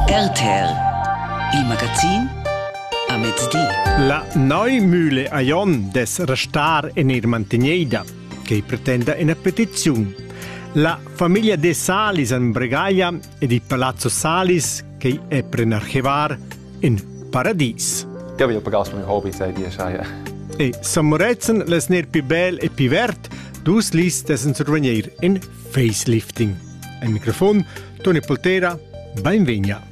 Galter, il magazin a mezdi. La Neumühle a Jon des restar en ir mantegnida, che pretenda una petizione. La famiglia de Salis en Bregaglia ed il palazzo Salis, che è per archivar in paradis. Ja vi pagaus mei hobby, sei dir, schai. E San Moretzen les ner pi bel e pi vert, dus lis des en survenier in Facelifting. Ein microfon, Toni Poltera, benvegna.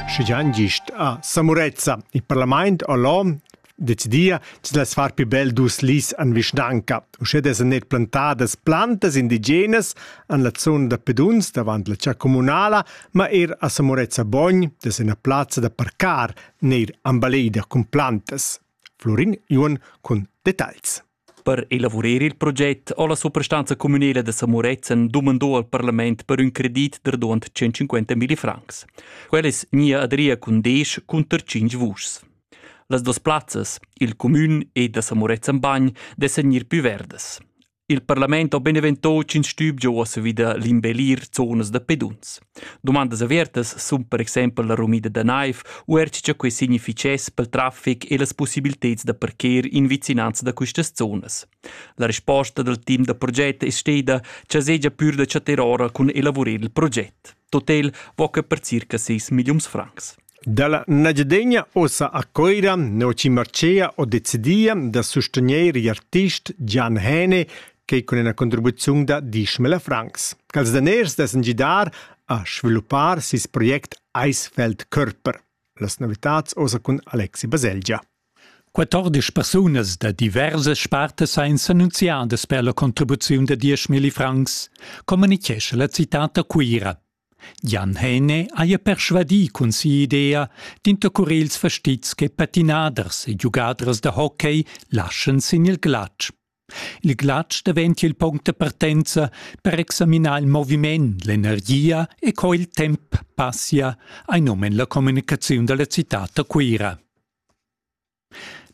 Schigian gist a Samurezza. Il parlament all'OM decidia che las far più bel dus lis an vischnanca. Uschè des net plantadas plantas indigenas an la zona da peduns davant la cia comunala, ma er a Samurezza Bogn, des ena plazza da parcar, neir ambaleda cun plantas. Florin Juon con detagls. Per elavurer il proget ho la suprastanza cumünela da Samurezen dumando al parlament per ün credit da duond 150 mille francs. Quella es gnida adria cun desch cunter tschinch vuschs. Las duas plazzas, il cumün e da Samurezen Bagn, dessan gnir pü verdas. Il parlament ho beneventò tschinch stübgio a savida l'imbellir zonas da peduns. Dumandas avertas sun per exempel la rumida da naiv u er cha quai significhess pel trafic e las pussibilteds da parker in vicinanza da quistas zonas. La resposta dal team da proget es steda cha segia pür da chatter ora cun elavurer il proget. Totel vo que per circa 6 milliuns francs. Dalla Nagiadegna ussa a Cuira Noci Marcea ho decidia da sustegner igl artist Gian Häne quei cun ina contribuziun da dieschmila francs. Quels daners dessen gidar a sviluppar sis project Eisfeld Körper. Las novitats ussa cun Alexi Baselgia. 14 persunas da diversas spartas ein s'annunziadas per la contribuziun da 10.000 francs, communichescha la citad da Cuira. Jan Häne haja persvadì cun si'idea d'intercurir ils fastizs che patinaders e giugaders da hockey laschan sin il glatsch. Il glatsch daventia il punct da partenza per examinar il moviment, l'energia e co il temp passia ein um en la communicaziun dalla citad da Cuira.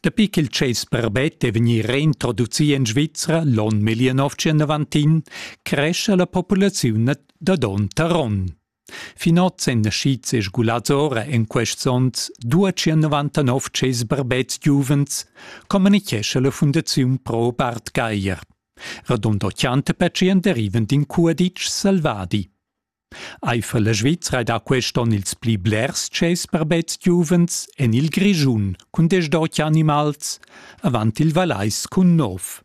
Dapi ch'il tschess barbet è vegnì reintroducì en Svizra l'onn 1991, crescha la populaziun da donn tar onn. Fin oz èn naschids e sgulads ora en quests onns 299 tschess barbets giuvens, communitgescha la Fundaziun Pro Bart Geier. Radund 80 pertschient derivan d'in cuaditsch selvadi. Eifer la Svizra da quest onn ils pli blers tschess per bets giuvens en il Grischun cun desch-dotg animals, avant il Valais cun nov.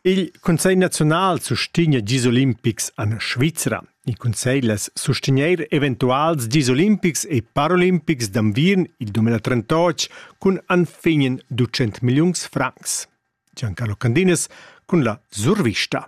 Il Consiglio nazional sustegna gis olimpics en Svizra. Il Consiglio sustegneir eventuals gis olimpics e parolimpics d'anviern il 2038 cun anfignen 200 milliuns francs. Giancarlo Candinas cun la survista.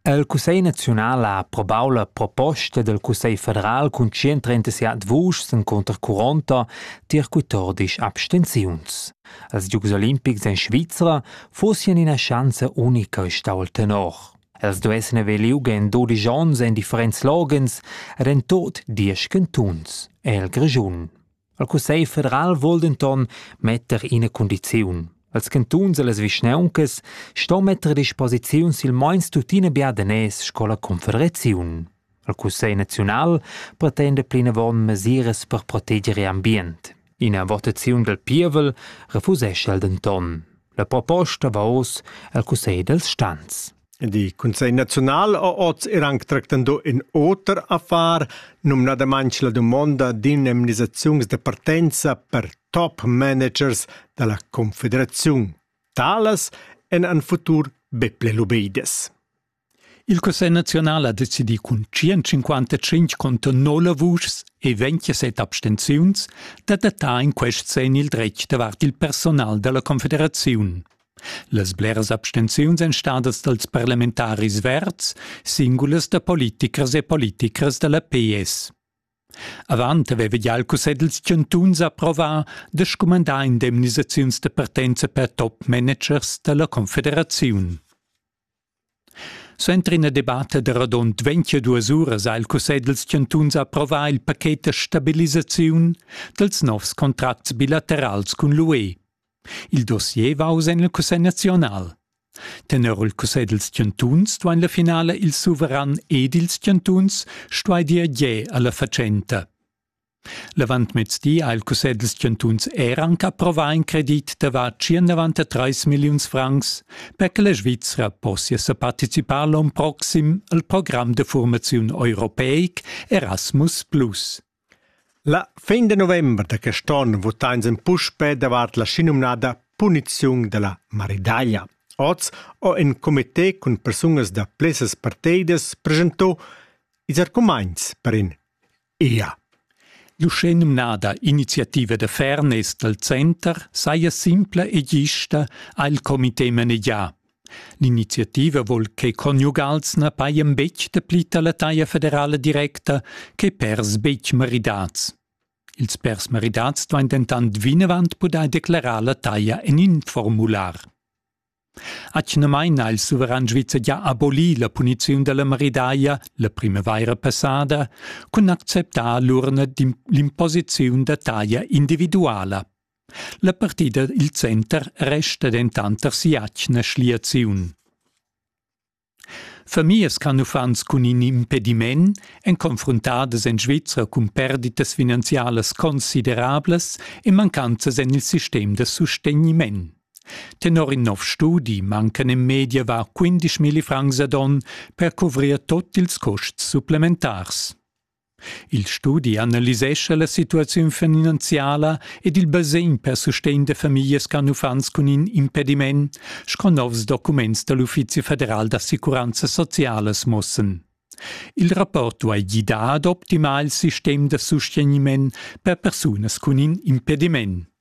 El Cussegl naziunal ha probau la proposta del Cussegl federal cun 137 vuschs en conter 40 tier 14 abstenziuns. Els Giugs Olimpics en Svizra fossien ina schanza unica stau tenor. Els duessen aver liug en 12 onns en differents logens ed en tot 10 cantuns el Grischun. Il Cussegl federal vuol denton metter ina cundiziun. Als cantuns e las vischnauncas sto metter a disposiziun silmeins tuttina bia daners sco la Confederaziun. Il Cussegl naziunal pretenda plinavon mesiras per proteger l'ambient. Ina votaziun del pievel refusesce el denton. La proposta va oz al Cussegl dels Stans. Il Cussegl naziunal ha oz er anc tractando in oter affar, numnadamain la dumonda d'indemnisaziuns de partenza per top managers da la Confederaziun. Talas en an futur be ple lubeides. Il Cussegl naziunal ha decidì cun 155 conto 9 vuschs e 27 abstenziuns d'adattar in quest sen il dretg davart il personal da la Confederaziun. Las bleras abstenziuns èn stadas dals parlamentaris verds, singulas da politichers e politichers da la PS. Avant aveva gia il Cussegl dals chantuns approvà da scumandar indemnisaziuns da partenza per top managers da la confederaziun. Suenter ina debatta da radund ventgaduas uras ha il Cussegl dals chantuns approvà il paket da stabilisaziun dals novs contracts bilaterals cun l'UE. Il dossier va oz en il Cussegl naziunal. Tenor il Cussegl dals chantuns duain la finala il suveran ed ils chantuns stuair dir ge a la fatschenta. L'avantmezdi ha il cussegl dals chantuns er anc approvà in credit da var tschient trais milliuns francs, per che la Svizra possia sa participar l'onn proxim al program da formaziun europeic Erasmus+. La fin de november da quest onn votain ins puspè davart la schinumnada puniziun da la maridaglia. Oz ho in comité cun persunas da plessas parteidas presentò ils argumaints per in Ea. L'uschenumnada iniziativa da fairness dal center saja simpla e gista ha il comité manegià. L'iniziativa vol che conjugals na pajan betg dapli da la taglia federala directa che pers betg maridats. Ils pers maridats duain dentant vinavant pudair declarar la taglia en in formular. Atgnamain ha il suveran svizzer gia abolì la puniziun da la maridaglia la primavaira passada cun acceptar l'urna d'imposiziun da taglia individuala. La partida il center resta dentant tar si'atgna schliaziun. Famiglias ch'han uffants cun in impediment èn confruntadas en Svizra cun perditas finanzialas considerablas e mancanzas en il sistem da sustegniment. Tenor in nov studi mancan en media var 15 milli francs ad onn per cuvrir tut ils custs supplementars. Il studi analisescha la situaziun finanziala ed il basegn per sustegn da famiglias ch'han uffants cun in impediment, sco novs documents da l'Uffizi federal d'assicuranza socialas muossan. Il rapport duai gidar ad optimar il sistem da sustegniment per persunas cun in impediment.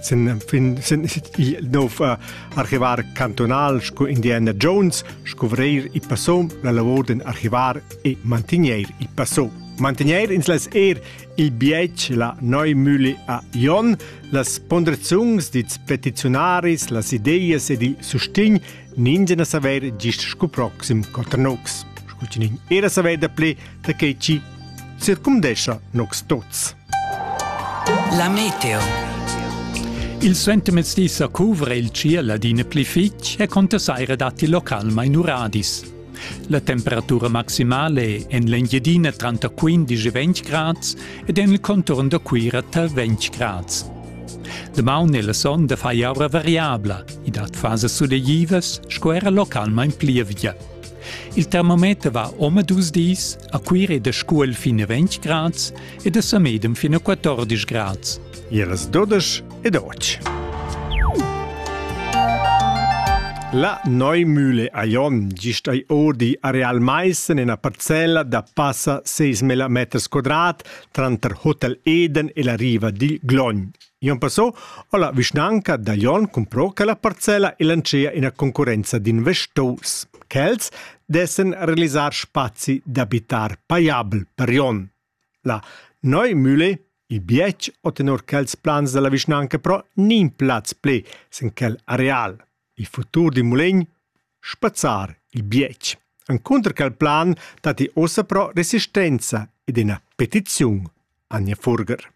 sin fin sin nov archivar cantonal sco Indiana Jones scuvrir i passo la lavor den archivar e mantegner il passo mantegner ins las er il bietg la neu müli a Jon las ponderazions dits petiziunaris las ideas ed il sustegn ninzen a saver gist sco proxim Cotranox Scultinin era saver da ple da quei chi circumdescha nox tots. La meteo. Il sentiments dis a cuvre il ciel adina pli fitg e conta saire datti local mai nuradis. La temperatura maximale en l'Engiadina tranta 15-20 grads ed en il contorn da Cuira tar 20 grads. Damaun e la sonda fai aura variabla, i dat fasas sulegivas sco era localmain plievgia. Il termometer va omadus dis a Cuire de Scuol fin a 20 grads ed a Samedem fin a 14 grads. Iras 12 ed 8. La Neumühle a Jon gist ai odi a Real Maissen ena parcella da passa 6.000 meters quadrat tranter Hotel Eden e la riva dil Glogn. Jon Passot ho la vischnanca da Glion cumpro quella parcella e lantschea ina concurrenza d'investors. Quels dessen realisar spazi d'abitar paiabel per Jon. La Neu Mühle il bietg o tenor quels plans della vischnanca però nin plaz ple sin quel areal. Il futur dil Mulegn? Spazzar il bietg. Encunter quel plan datti ussa però resistenza ed ina petiziun. Anja Furger.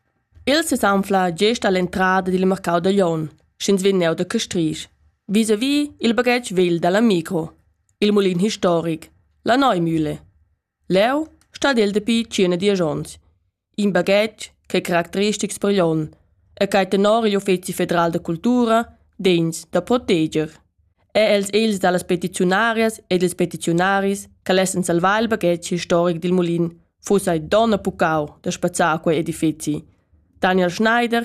Il sesanfla gest all'entrada dil marcau da Glion, sch'ins vegn neu da Castrisch. Vis-a-vis il baghetg vegl dalla micro. Il mulin historic. La Neumühle. Leu stat el dapi tschient dies onns. in baghetg ch'ei caracteristics per Jon e quei tenor igl uffeci federal da cultura degns da proteger. È els ils dallas petiziunarias ed ils petiziunaris che lessen salvar il baghetg historic dil mulin fuss ei donn e puccau da spazzar quei edifeci. Daniel Schneider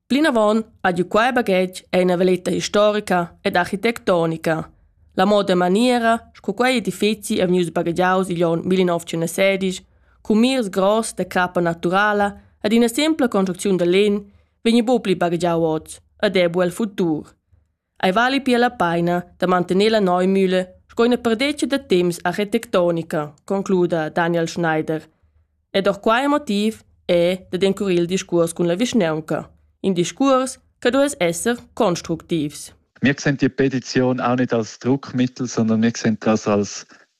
Plinavon ha giu quei baghetg ei ina veleta historica ed architectonica. La moda e maniera sco quei edifeci è vegnius baghegiaus igl onn 1916 cun mirs gross da crappa naturala ed ina sempla construcziun da legn vegni buca pli baghegiau oz ed è bu el futur. Ei vali pia la peina da mantener la Neumühle sco ina perdetga da temps architectonica, concluda Daniel Schneider. Ed auch quai motiv è dad encurir il discurs cun la vischnaunca, in discurs che duess esser constructivs. Wir sehen die Petition auch nicht als Druckmittel, sondern wir sehen das als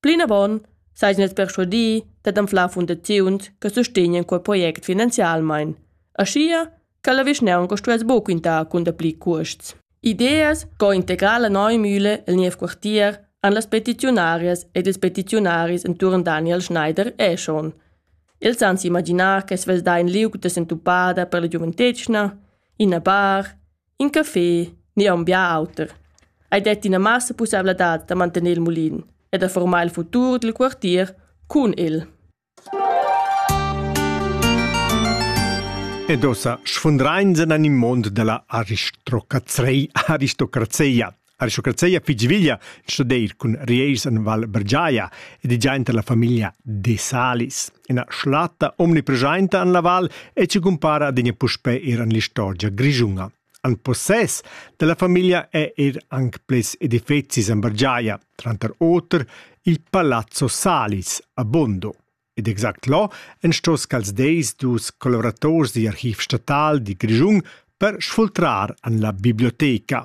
Plinavon seigien els perschuadi dad anflar fundaziuns che sustenien quei project finanzialmein, aschia che la vischnaunca stuess buca quintar cun dapli cuosts. Ideas co integrar la nova mühle el niev quartier han las petiziunarias ed ils petiziunaris entuorn Daniel Schneider e schon. Els han s'imaginar che svess dà in liug da sentupada per la giuventetgna, ina bar, In café ni aunc bia auter. Ei detti ina massa pusseivladad da mantener il mulin e da formar il futur dil quartier cun el. Ed ossa sfundrains en in mond della aristocrazei aristocrazeia. Aristocrazia fitg veglia studeir cun rieis en Val Bergiaia ed i giainter la famiglia De Salis, ina schlatta omnipresainta en la val e ci cumpara adina puspè er en l'istorgia grischunga. En possess della famiglia è er anc ples edifecis en Bergiaia, tranter oter il Palazzo Salis a Bondo. Ed exact là en stos cals deis dus collaborators di archiv statal di Grischung per sfultrar an la biblioteca,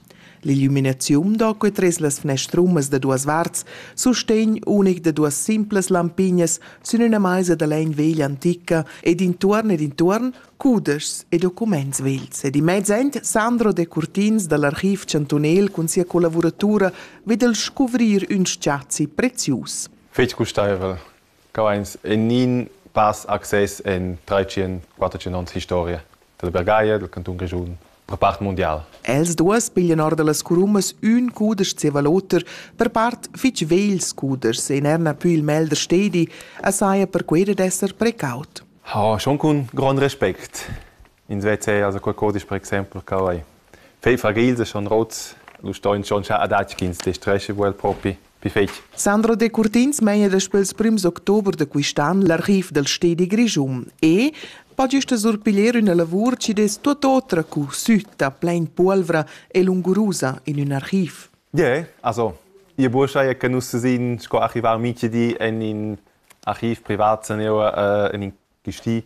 L'illuminaziun da quei tres las fnestrumas da duas varts sustegn unic da duas simplas lampignas sün üna maisa da legn veglia antica ed intuorn ed intuorn cudeschs e documents vegls. Ed in mezz end Sandro De Curtins dall'archiv chantunel cun sia collavuratura ved el scuvrir ün spazi prezius. Fetg gustaivel. Cavains gnign pass access in trais-tschient, quatterdtschient ons historia dalla Bergaglia, dal cantun Grischun, per part mundial. Els duos piglian or da las curumas ün cudesch zieva l'oter, per part fich vegls cudeschs e n'erna pü il mel da stedi, e saja per quai dad esser precaut. Ha schon cun grond respect ins veza also qualcosa per exempel cavai. Fei fragils e schon rots, lu stoin schon scha adatg ch'ins destresche vuel propi pi fetg. Sandro Decurtins meina daspö ils prims october da quist'an l'archiv dal stedi Grischun e pa gista surpiglier üna lavur chi dess tuot otra cu sütta, plain puolvra e lungurusa in ün archiv. Ie, also ie buoschai è che nus sin sco archivar minchedi en in archiv privat se neu äh, in in gesti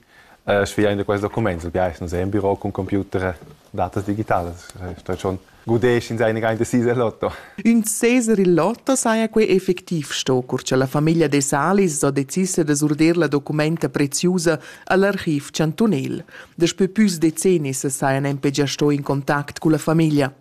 sviain da quest document. Il biais nus è in biro cun computer datas digitalas. Sto schon gudesch in seine rein decise lotto. Ün seser il lotto saja quei effectiv sto, cur cha la famiglia de Salis ho decis da surder la documenta preziusa al archiv chantunel. Daspö püs decennis sajan empe già sto in contact culla famiglia.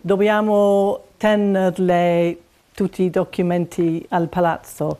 Dobbiamo tenerle tutti i documenti al palazzo,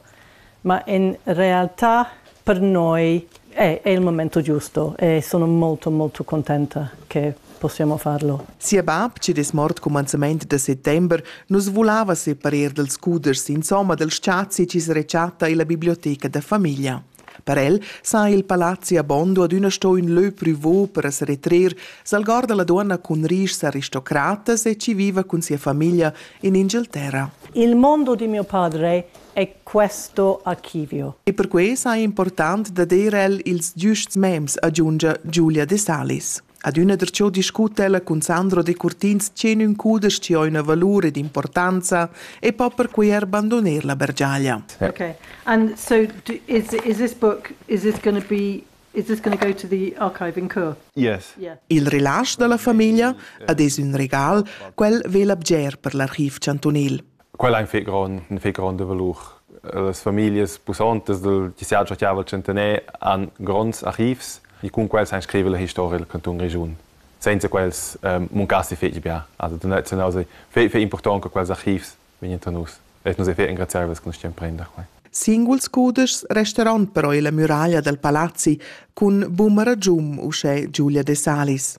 ma in realtà per noi è, è il momento giusto e sono molto molto contenta che possiamo farlo. Sia bab, chi'd es mort cumanzamaint da settember, nus vulava separer dals scuders insomma dal spazi chi's rechatta illa biblioteca da famiglia. Per el sa il palazzi a Bondo adüna sto ün lö prüvo per as retrer, s'algorda la duonna cun rischs aristocratas e chi viva cun sia famiglia in Inghilterra. Il mondo di mio padre è questo archivio. E per quai sa è important da dir el ils giusts mems, aggiungia Giulia De Salis. Adüna darcheu discuta ella cun Sandro Decurtins tge ün cudesch chi ho üna valur ed importanza e po perquai eir bandoner la bergiaglia. Okay. And so do, is is this book is this going to be is this going to go to the archive in Chur? Yes. Yeah. Il relasch da la famiglia ad es ün regal, quel vela bger per l'archiv chantunil. Quella ein fetg grond, ein fetg gronda valur. Las familias pussontas dal TCA Giachiavel Centenaire han gronds archivs e cun quels han scrivere la historia del canton Grischun. Senza quels ehm, muncassi fetg bia. Also tradiziunal sei fetg, fetg important che quels archivs vegnien a nus. E nus ei fetg engraziabels che nus stiam prender quei. Singuls cudeschs resteran però illa muraglia dal palazzi cun buma ragium uschè Giulia De Salis.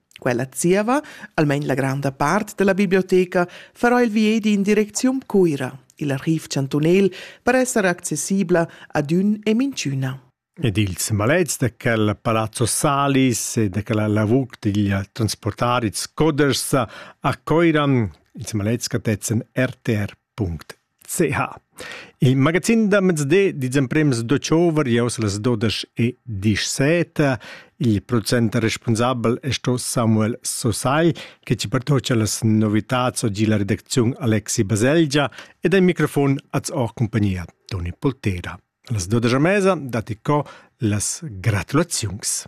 Quella zieva, almain la granda part della biblioteca, farà il viedi in direcziun Cuira, il archiv chantunel, per esser accessibla ad ün e minchüna. Ed ils malets de quel palazzo Salis e de quella lavur digli transportari Scoders a Coiran, ils malets catetzen rtr.it. CH. Il magazin da mezdi dils emprems d'october, jeu las dudesch e dissette. Il procent responsabel è sto Samuel Sosai, che ci pertocia las novitads oggi la redacziun Alexi Baselgia ed al microfon az ho compagnia Toni Poltera. Las dudesch a mesa dati co las gratulaziuns.